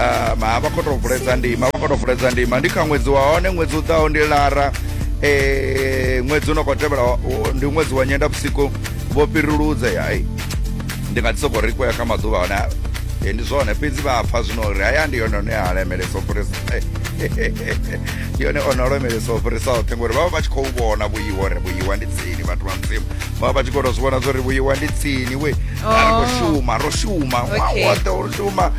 Ah, ma a vha khou tou vuledza ndima a vha khou tou vuledza ndima ndi kha ṅwedzi wa hone ṅwedzi u ḓaho ndi lara eh, ṅwedzi u no khou tevhela wa- wa- ndi ṅwedzi wa nyenda vhusiku vho fhiruludze hai ndi nga dzi sokou ri khoya kha maḓuvha hone a- eh, ndi zwone fhedzi vha pfa zwino uri haya ndi yone one a lemelesa u fhirisa ndi yone one o lemelesa u fhirisa oṱhe ngori vha vha vha tshi khou vhona vhuiwa uri vhuiwa ndi tsini vhathu vha mudzimu vha vha vha tshi khou tou zwi vhona zwa uri vhuiwa ndi tsini we a ri khou Oh. shuma ro shuma Okay. wawoṱhe ro shuma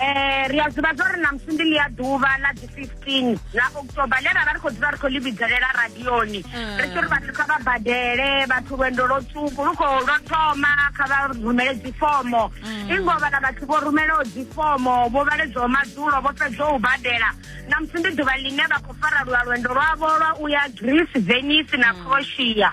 eh ri a zwiva zwa uri namusi ndi ḽi a ḓuvha ḽa dzi 15 ḽa october ḽe ra vha ri khou dzula ri khou ḽi vhidzelela radioni mm. ri tshi uri vhathu kha vha badele vhathu lwendo lwo tswuku lu khou lwo thoma kha vha rumele dzifomo mm. i ngo vhala vhathu vho rumelaho dzifomo vho vhaledzwaho madzulo vho fhedzwa u badela namusi ndi ḓuvha ḽine vha khou fara lwa lwendo lwavho lwa u ya greece venice na mm. croatia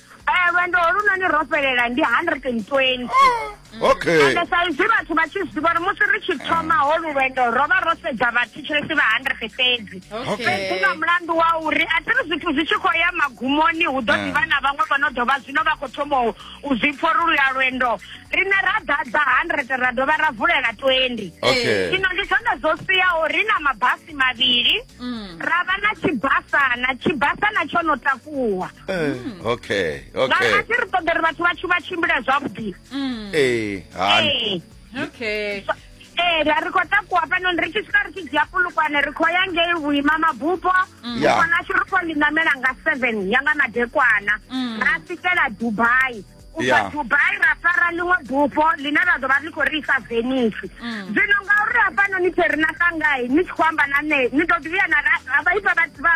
Eh, lwendo holunoni ro fhelela ndi 120 okay ende sa izwi vhathu vha tshi zwiḓivha uri musi ri tshi thoma holu lwendo ro vha ro sedza vhathetshelesi vha 100 fhedzi Okay. fhedzi nga mulandu wa uri a thiri zwithu zwi tshi khou ya magumoni hu ḓo Eh. ḓivha na vhaṅwe vho no ḓo vha zwino vha khou thoma u- u zwi pfa uri luya lwendo riṋe ra ḓadza 100 ra dovha ra vulela 20 okay zwino ndi zwone zwo siyaho ri na mabasi mavhili ra vha na tshibasana tshibasana tsho no takuwa Eh, mm. okay okay a re ṱoḓa ri vhathu vhathu vha tshimbila zwavhuḓi mm. ee hani eh. okay ee ri ri khou takuwa fhano ri tshi swika ri tshi dzhia pulukwane ri khou ya ngei vhuima mabupo mukwana mm. ashu ri khou ḽinamela nga seven ya nga madekwana ra swikela dubai ubva dubai ra fara ḽiṅwe bupo ḽine ra ḓo vha ḽi khou ri isa venisi mm. zwino ngauri hafhanoni phe ri na sangai ni tshi khou amba na nṋe ni ḓo ḓivhiya na vha ifa vhathu vha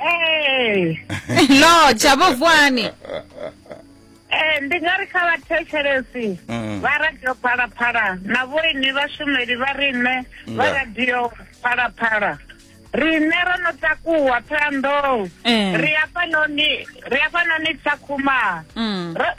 ee no dzhavho vuani ee ndi nga ri kha vhathetshelesi Mm. vha radio phalaphala na vhoini vhashumeli vha riṋe vha Nda. radio phalaphala riṋe ro no takuwa thohoyandou Eh. ri afhanoni ri afhanoni tsakhuma Mm. Ro-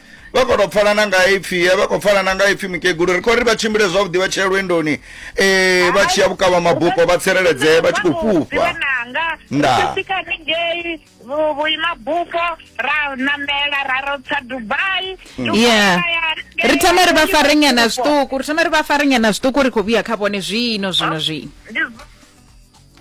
vha khou tou pfala na nga ipfhi vha khou pfala na nga ipfhi mukegulu ri khou ri vha tshimbile zwavhuḓi vha tshia lwendoni um vha tshiya vhukavha mabupo vha tsireledzee vha tshi khou fhufha ndasika haningei vhuimabupo ra namela ra rotsa dubai mm. yeah ri thoma ri vha farenyana zwiṱuku ri thoma ri vha farenyana zwiṱuku ri khou vhuya kha vhone zwino zwino zwino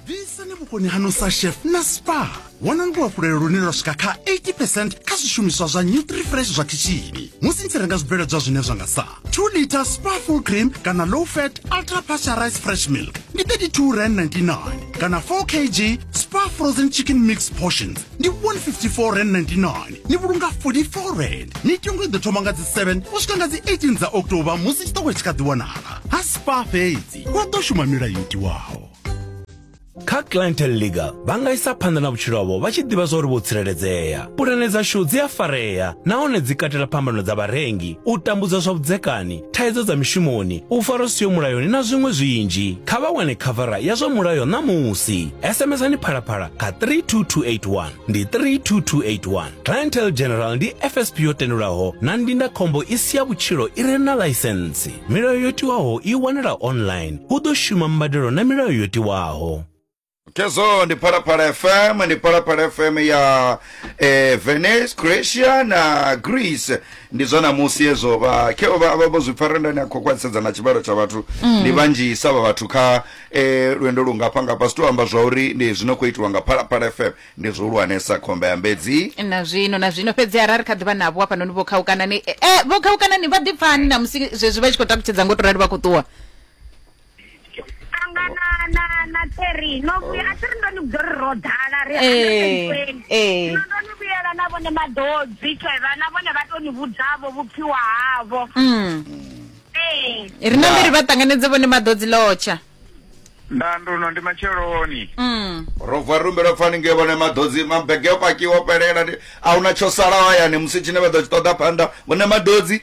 ḓisani vhukoni hanu sa chef na spa wanani luhafhulelo lune lwa swika kha 80 percent kha zwishumiswa zwa nutrifresh zwa khishini musi ni tshi renga zwibveledzwa zwine zwa nga sa 2 liter spa full cream kana low fat ultra pasteurized fresh milk ndi 32 rand 99 kana 4 kg spa frozen chicken mix portions ndi 154 rand 99 ni vhulunga 44 rand mitengo i ḓo thoma nga dzi 7 u swika nga dzi 18 dza october musi tshiṱoko tshi kha ḓi wanala ha spa fhedzi vha ḓo shuma milayo yo tiwaho kha clientel leaga vha nga isa phanḓa na vhutshilo havho vha tshi ḓivha zwa uri vho tsireledzea pulane dzashu dzi a farea nahone dzi katela phambano dza vharengi u tambudzwa zwa vhudzekani thaidzo dza mishumoni u fara siyo mulayoni na zwiṅwe zwinzhi kha vha wane khavara ya zwa mulayo ṋamusi sms-ani phalaphala kha 32281 ndi 32281 clientel general ndi fsp yo tendelwaho na ndindakhombo i si ya vhutshilo i re na ḽaisensi Milayo yo tiwaho i wanala online. Hu ḓo shuma mbadelo na milayo yo tiwaho. Kezo ndi Phalaphala FM ndi Phalaphala FM ya eh, Venice, Croatia na Greece ndi zwa namusi hezwo vha kheo vha vha vho zwi pfara ndani a khou khwaṱhisedza na tshivhalo tsha vhathu ndi vhanzhisa vha vhathu kha eh, lwendo lungafha ngafha si tou amba zwa uri ndi zwino khou itiwa nga Phalaphala FM Ndi zwihulwanesa khomba ya mbedzi. Na zwino, na zwino, fhedzi arali kha ḓivha navho hafhanoni vho khaukana ni, eh, eh, vho khaukana ni vha ḓipfani na musi zwezwi vha tshi khou takutshedza ngo to rali vha khou ṱuwa. Anga na, na, na Terry, no vhuya, a Terry ndo ni vhudza uri ro ḓala, ri Eh, 120. eh. Zwino ndo ni vhuyela na vhone maḓodzi, Trevor, na vhone vha to ni vhudzavho vhupfiwa havho. Mm. Eh. Ri na mbiri vha ṱanganedze vhone maḓodzi lotsha. ndanduno ndi matsheloni mm. ro bva rumbelo pfani ngei vhone maḓodzi mabege o pakiwa o fhelela ndi a huna tsho salaho hayani musi tshine vha ḓo tshi ṱoḓa phanḓa vhone maḓodzi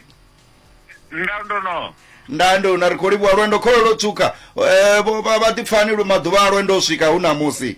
ndanduno ndande una ri khou livhuwa lwendo khololo tshuka um vhaḓipfani lu maḓuvha a lwendo u swika hu na musi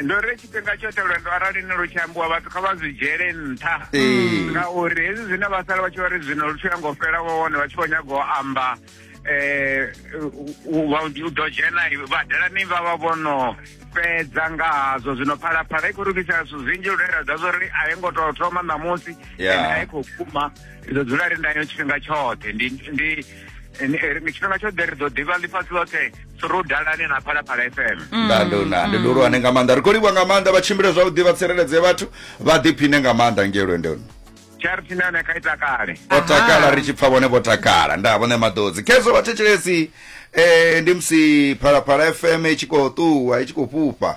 ndo ri tshifhinga tshoṱhe lwendo arali ni lu tshi ambiwa vhathu kha vha zwi dzhele nṱha mm. ngauri hezwi zwine vha sala vha tshi vha ri zwino lu tshi yango fhela vho vhone vha tshi khou nyaga u amba um u ḓo dzhena vhadelani vha vha vhono fhedza nga hazwo zwino phalaphala i khou lugisa zwithu zwinzhi lune ra ḓa zwo ri a i ngo tou thoma ṋamusi a i khou kuma i ḓo dzula ri ndayo tshifhinga tshoṱhe ndi tshifhinga tshoḓhe ri ḓo ḓivha ḽifhasi ḽoṱhe ro dalane na phalaphala fm mm. ndandona ndi ḓo lwane nga maanḓa ri khou livha nga maanḓa vha tshimbile zwavhuḓi vha tsireledze vhathu vha ḓiphine nga maanḓa ngei lwendoni charity na yone kha i takale vho takala ri tshi pfa vhone vho takala nda vhone maḓodzi khezwo vhathetshelesi um ndi musi phalaphala fm i tshi khou ṱuwa i tshi khou fhufha